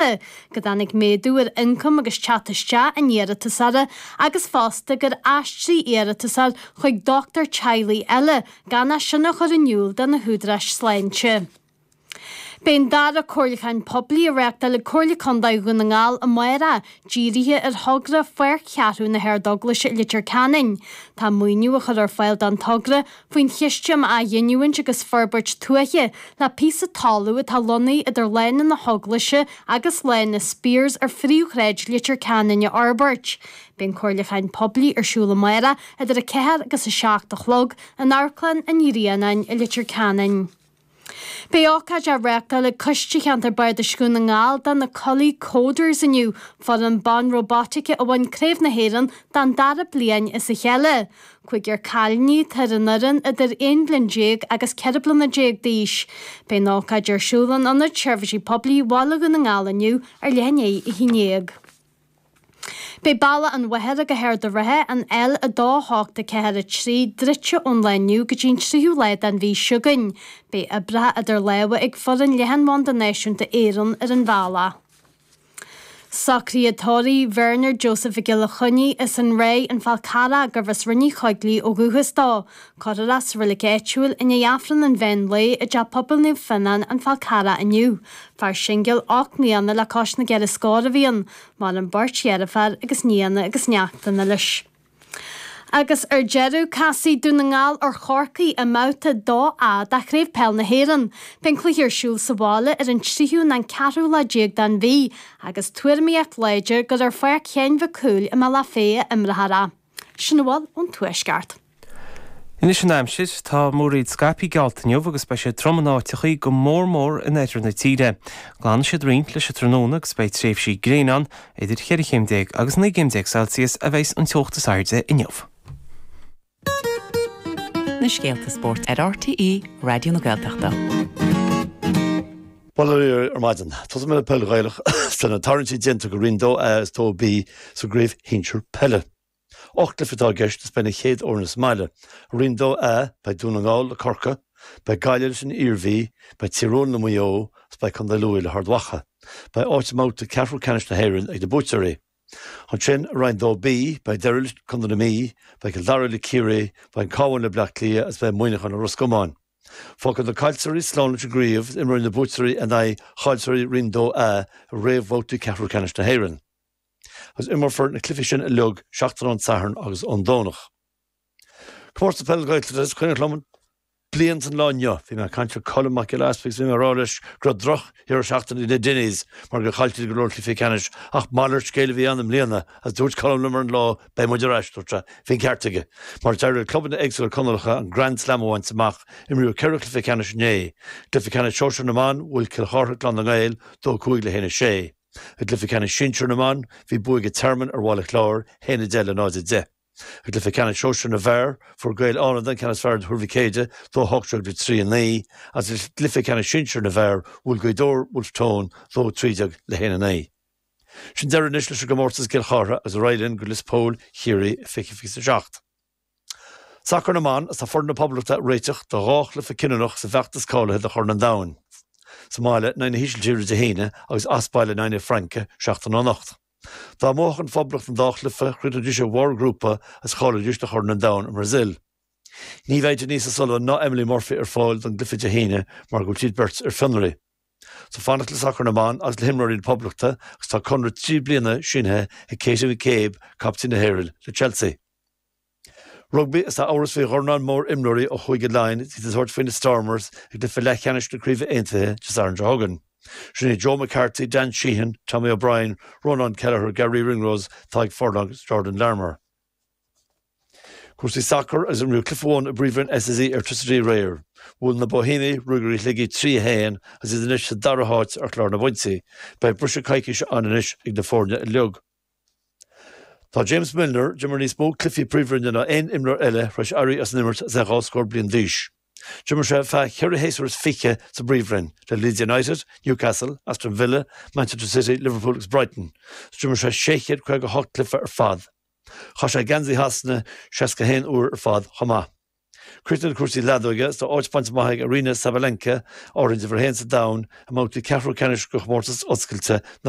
Aire go dtáinig méadú ar ioncam agus teacht isteach an iarratasóra agus fosta gur aistríodh an t-iarratasóir chuig dochtúir teaghlaigh eile gan é sin a chur in iúl do na húdaráis sláinte. Beidh an dara comhairliúchán poiblí á reáchtáil ag Comhairle Contae Dhún na nGall amárach dírithe ar thogra Pháirc Cheathrú na hArdeaglaise i Leitir Ceanainn. Tá maoiniú á chur ar fáil don togra faoin Chiste um Athghiniúint agus Forbairt Tuaithe, le píosa talún atá lonnaithe idir Lána na hEaglaise agus Lána Speers ar phríomhshráid Leitir Ceanainn a fhorbairt. Beidh an comhairliúchán poiblí ar siúl amáireach idir 4 agus 7 a chlog in Amharclann an Ghrianáin i Leitir Ceanainn. Beidh ócáid á reáchtáil ag Coiste Cheantar Bardais Dhún na nGall do na Codily Coders inniu, foireann ban róbaitíce a bhain Craobh na hÉireann don dara bliain as a chéile. Cúigear cailíní atá ar an fhoireann, idir 11 bliain agus 14 bliana d'aois. Beidh an ócáid ar siúl in Ionad Seirbhísí Poiblí Bhaile Dhún na nGall inniu ar leath i ndiaidh a haon déag. Beidh Bealach an Mhachaire go hArd an Rátha, an L2 8 4 3, druidte ón lá inniu go dtí an tríú lá den mhí s'againn. Beidh oibreacha eadar lámha ag foireann Leathanbhanda Náisiúnta Éireann ar an bhealach. Socraíodh tórramh Bernard Joseph Mhic Giolla Choinnigh as an Ráith, an Fál Carrach, gurbh as Rinn Uí Choigligh ó dhúchas dó. Cuirfear é sa reilig áitiúil i ndiaidh Aifreann an mheán lae i dTeach Pobail Naomh Fionán, An Fál Carrach inniu. Fear singil ocht mbliana le cois na gceithre scór a bhí ann. Maireann beirt dheirféar agus nianna agus neachtanna leis. Agus ar deireadh, casfaidh Dún na nGall ar Chorcaigh i mbabhta 2A de Chraobh Peil na hÉireann. Beidh an cluiche ar siúl sa bhaile ar an tríú ná an ceathrú lá déag den mhí agus tuairimíocht láidir gur ar Pháirc Sheáin Mhic Cumhaill i mBealach Féich a imreofar é. Sin a bhfuil ón Tuaisceart. Anois an aimsir, tá múraíl scaipthe geallta inniu agus beidh sé trom in áiteachaí go mór mór in oirthear na tíre. Glanfaidh siad roinnt leis an tráthnóna agus beidh tréimhsí gréine ann, idir 14 chéim agus 19 céim Celsius a bheidh an teocht is airde inniu. Na scéalta spóirt ar RTÉ Raidió na Gaeltachta. Bail ó Dhia oraibh ar maidin. Tosóidh mé le peil Ghaelach is na tarraingtí déanta do Roinn 2A is 2B sa gcraobh shinsir peile. Ocht gcluiche atá i gceist is beidh na chéad fhoirne sa mbaile. Roinn 2A, beidh Dún na nGall le Corcaigh, beidh Gaillimh leis an Iarmhí, beidh Tír Eoghain le Maigh Eo is beidh Contae Lú le hArd Mhacha. Beidh áit i mbabhta ceathrú ceannais na hÉireann ag na buaiteoirí. Ansin, i Roinn 2B, beidh Doire leis Contae na Mí, beidh Cill Dara le Ciarraí, beidh an Cabhán le Bleá Cliath is beidh Muineachán le Ros Comáin. Fágfaidh na caillteoirí slán leis an gcraobh is imreoidh na buaiteoirí in aghaidh chaillteoirí Roinn 2A i réamhbhabhtaí ceathrú ceannais na hÉireann. agus imreofar na cluichí sin uilig seachtain ón Satharn agus ón Domhnach. Comórtas Peil Gaeltachta is cuimhneach liom bliain is an lá inniu. Bhí mé ag caint le Colm Mac Giolla Easpaig is bhí mé ag rá leis go raibh drochdheireadh seachtaine ag na Dinneys mar gur chaill siad go leor cluichí ceannais ach malairt scéil a bhí ann i mbliana agus dúirt Colm liom ar an lá beidh muid ar ais, dúirt sé, bhí an ceart aige mar d'éirigh le clubanna éagsúla Conallacha an Grand Slam a bhaint amach, imríodh ceithre chluiche ceannais inné, cluiche ceannais sóisear na mBan, bhuail Cill Chartha Clann na nGael, 2-5 le 1-6. I gcluiche ceannais sinsear na mban, bhí bua ag an Tearmann ar Bhaile Chláir, 1-10 le 0-10. I gcluiche ceannais sóisear na bhfear, fuair Gaeil Fhánada an ceann is fearr ar Thuar Mhic Éadaigh, 2-18 le 3-9, agus i gcluiche ceannais sinsear na bhfear, bhuail Gaoth Dobhair Wolfe Tone, 2-13 le 1-9. Sin deireadh anois leis an gcomórtas i gCill Chartha agus ar aghaidh linn go Lios Póil, Chiarraí, i fiche fiche is a seacht. Sacar na mBan, Is tá foireann na Poblachta ag réiteach do dhá chluiche cinniúnach sa bhfeachtas cáilithe do Chorn an Domhain, sa mbaile in aghaidh na hÍsiltíre Dé hAoine agus as baile in aghaidh na Fraince seachtain ó anocht. Dá mbuafadh an Phoblacht an dá chluiche, chríochnóidís ar bharr an ghrúpa agus cháileoidís do Chorn an Domhain sa mBrasaíl. Ní bheidh Denise O'Sullivan ná Emily Murphy ar fáil don gcluiche Dé hAoine mar go bhfuil siad beirt ar fionraí. Is ag fanacht le sacar na mban agus le himreoirí na Poblachta agus tá conradh trí bliana sínithe ag Katie McCabe, caiptín na hÉireann le Chelsea. Rugbaí is tá amhras faoi dhornán mór imreoirí ó Chúige Laighean is iad ag tabhairt faoi na Stormers i gcluiche leathcheannais na Craoibhe Aontaithe Dé Sathairn seo chugainn. Sin iad Joe McCarthy, Dan Sheehan, Tommy O'Brien, Rónán Kelleher, Garry Ringrose, Tadhg Furlong is Jordan Larmour. Cúrsaí sacair agus imríodh cluiche amháin i bPríomhroinn SSE Airtricity aréir. Bhuail na Boihéamaigh Ruagairí Shligigh 3, 1 agus iad anois sa dara háit ar chlár na bpointí. Beidh briseadh coicíse ann anois ag na foirne uilig. Tá James Milner, a d'imir níos mó cluichí Príomhroinne ná aon imreoir eile tar éis éirí as an imirt agus é dhá scór bliain d'aois. D'imir sé ar feadh cheithre shéasúr is fiche sa bPríomhroinn, le Leeds United, Newcastle, Aston Villa, Manchester City, Liverpool agus Brighton, is d'imir sé 658 cluiche ar fad. Chaith sé geansaí Shasana 61 uair ar fad chomh maith. Críochnú le cúrsaí leadóige, is tá áit bainte amach ag Aryna Sabalenka, Árainn Uimhir 1 sa domhan, i mbabhtaí ceathrú ceannais de Chomórtas Oscailte na.